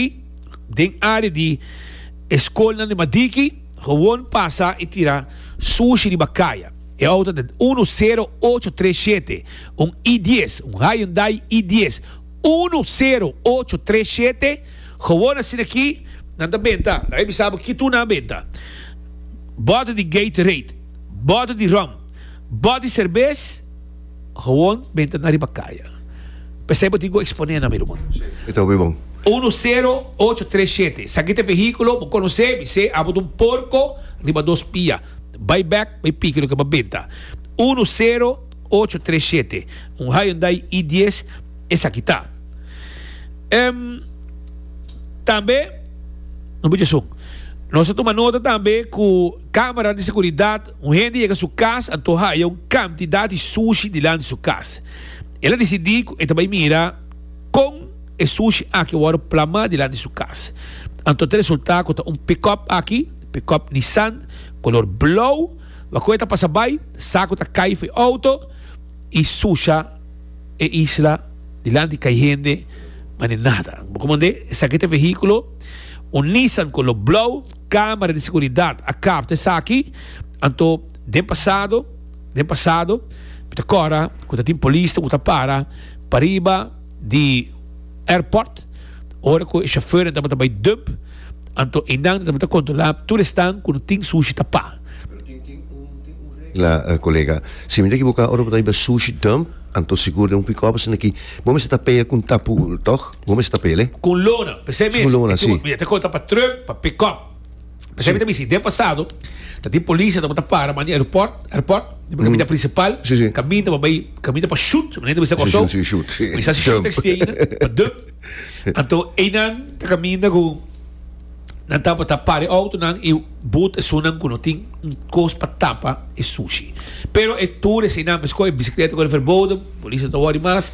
Mari den área di e skolnan di Madiki gewoon pasa i tira sushi riba kaya. E outo ta den uno sero ocho tres shete, un i dies, un Hyundai i dies, uno sero ocho tres shete, gewoon asin'akí nan ta benta, laga mi bisa bo ki tur nan a benta, bòte di Gatorade, bòte di ròm, bòt di serbes. Gewoon benta na riba kaya. P'esei bo tin ku eksponé nan, mi ruman. E ta hopi bon. Uno sero ocho tres shete, Esaki ta e vehíkulo, bo konos'é, bis'é, abo ta un porko riba dos pia. Bai bèk, bai piki loke bo a benta. Uno sero ocho tres shete, Un Hyundai i dies esaki ta. Ehm, tambe, no bidje esun. Nos a tuma nota tambe ku kámara di seguridat. Un hende yega su kas, anto haya un kantidat di sushi dilanti su kas. El a disidí ku e ta bai mira kon e sushi aki a wòrdu plamá dilanti su kas. Anto e ta resultá ku ta un pikòp aki, pikòp Nissan, kolor blou. Wa ku e ta pasa bai, sa ku ta kai for e outo i susha e isla dilanti kai hende manera nada. Bo komand'é, esaki ta e vehíkulo, un Nissan kolor blou. Camera di Seguridad a capta esaki, anto den pasado, den pasado, mi ta cora cu ta tin polisnan cu ta para pariba di airport, ora cu e chauffeurnan tabata bay dump, anto eynan ta tabata controla tur esnan cu no tin sushi ta pa. Pero tin tin un tin un regla colega, si mi no ta ekiboca ora cu ta bay sushi dump, Anto sigur den un pickup asina aki bo mester ta peye cu un tapu toch? Bo mester ta peyele? Cu un lona, p'esey mes e tubo mi a ta conta pa truck, pa pickup. P'esey mi ta bisti den pasado ta tin policia ta por ta para man di aeroport, airport, di bo caminda principal, caminda pa bay, caminda pa shoot, manera mi sa Corsou, mi sa si shoot exti ayina, pa dump. Anto eynan ta caminda cu. nan tabata pare autonan y boot esunnan cu no tin un cos pa tapa e sushi. Pero e tur eseinan mescua e bicicleta cu e verbodem, Policia no ta worry mas,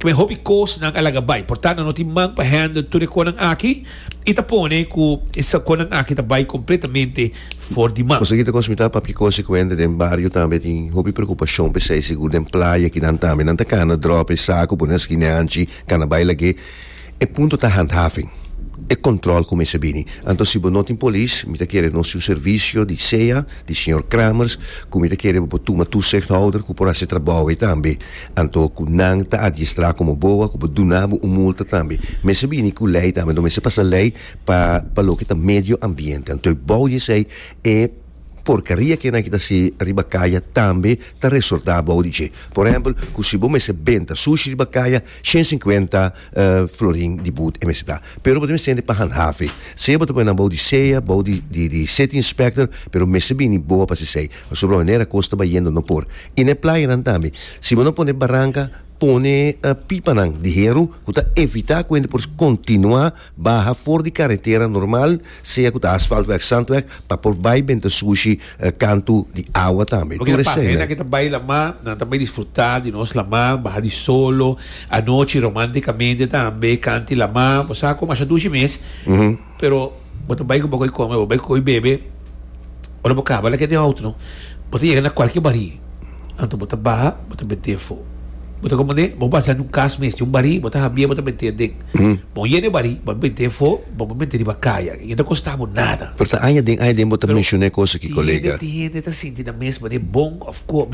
kme hopi cosnan a laga bay. Porta nan no tin man pa handle tur e conan aki y ta pone cu e saconan aki ta bay completamente for di man. Nos ta kita cos mita papia cose cu hende den bario tambe tin hopi preocupacion p'esey, sigur den playa kinan tambe. Nan ta cana drop e saco pone na skineanchi, cana bay lagué. E punto ta handhaving, e control cu mester bini. Anto si bo no tin polis, mi ta kere nos yu servicio di sea di señor Kramers cu mi ta kere bo por tuma toezichthouder cu por haci e trabou ei tambe. Anto cu nan ta adiestra como boa cu bo duna bo un multa tambe. Mester bini cu ley tambe, anto mester pasa ley pa pa loke ta medio ambiente. Anto ebou di esey e porcaria cu enaiki ta haci riba caya tambe ta resorta ebou di dje. Por ehempel cu si bo mester benta sushi riba caya, Shen sinkuenta florin di boet e mester da, pero bo ta mester hende pa handhavi, sea bo ta pone nan bou di sea bou di city inspector, pero mester bini boa pa sisei, pasobra manera kos ta bayendo no por, y n'e playanan tambe, si bo no pone baranka, pone pipanan di heru ku ta evita ku hende por kontinua. Baha for di karetera normal, sea ku ta asfaltweg, sandweg, pa por bai den ta sushi kantu di awa tambe. Loke ta pasa, e hendenan ku ta bai lamá, nan ta bai disfrutá di nos lamá, baha di solo, anochi, romántikamente tambe, kanti lamá. Bo sa ku masha dushi mes, pero bo ta bai ku bo ko'i kome, bo bai ku ko'i bebe. Ora bo kaba leke den auto no, bo ta yega na kualke barí. Anto bo ta baha, bo ta mete afó. Bo ta komand'é, bo basa di un kas mes, di un barí, bo ta hambia, bo ta mete aden. Bo yena e barí, bo a mete afó, bo a mete riba kaya. I no ta kosta bo nada. Pero ta aña den, aña den bo ta menshon'é kos akí, kolega. Tin hende ta sinti nan mes manera bon òf ku.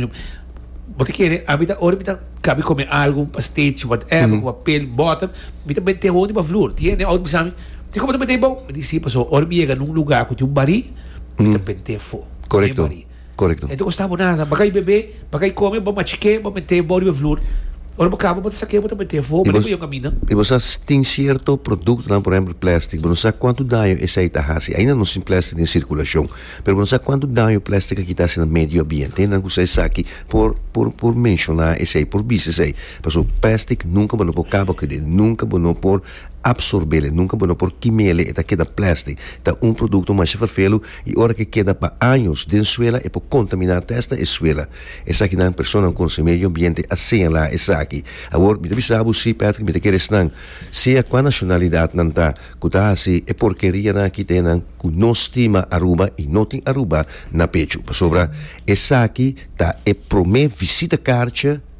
Bo ta kere, ami ta, ora mi ta kabi kome algu, un pasteci, whatever, ku papel, bòter, mi ta mete afó riba flur. Tin hende den auto bisa mi. Di como ta pente abo? Mi di si, pasobra ora mi yega na un lugar cu tin un barí, mi ta pente afo den e Correcto, barí. correcto. E ta costa bo nada. Bo a cay bebe, bo a cay come, bo a machique, bo a mete abo riba e flor. Ora bo caba, bo ta saque, bo ta mete afo. Y Mandi bo, cu yo camina. y bo sa tin cierto productonan, por ehemplo plastic, bo no sa cuanto daño esey ta haci. Ainda no tin plastic den circulacion, pero bo no sa cuanto daño plastic aki ta haci na medio ambiente. Hende nan cu sa esaki por, por, por menciona esey, por bisa esey. Pasobra plastic nunca bo no por caba cu e. Nunca bo no por. Absorbele, nunka bo no por kimele, e ta keda plèstik. Ta un produkto masha fèrfelu i ora ke keda pa años den suela e por kontaminá tè asta e suela. Esaki nan personanan konse medio ambiente a señalá esaki. Awor mi ta bisa bo si, Patrick, mi ta kere esnan, sea kua nashonalidat nan ta, ku ta hasi e porkerianan aki ta e nan ku no stima Aruba i no tin Aruba na pechu. Pasobra esaki ta e promé visita karcha.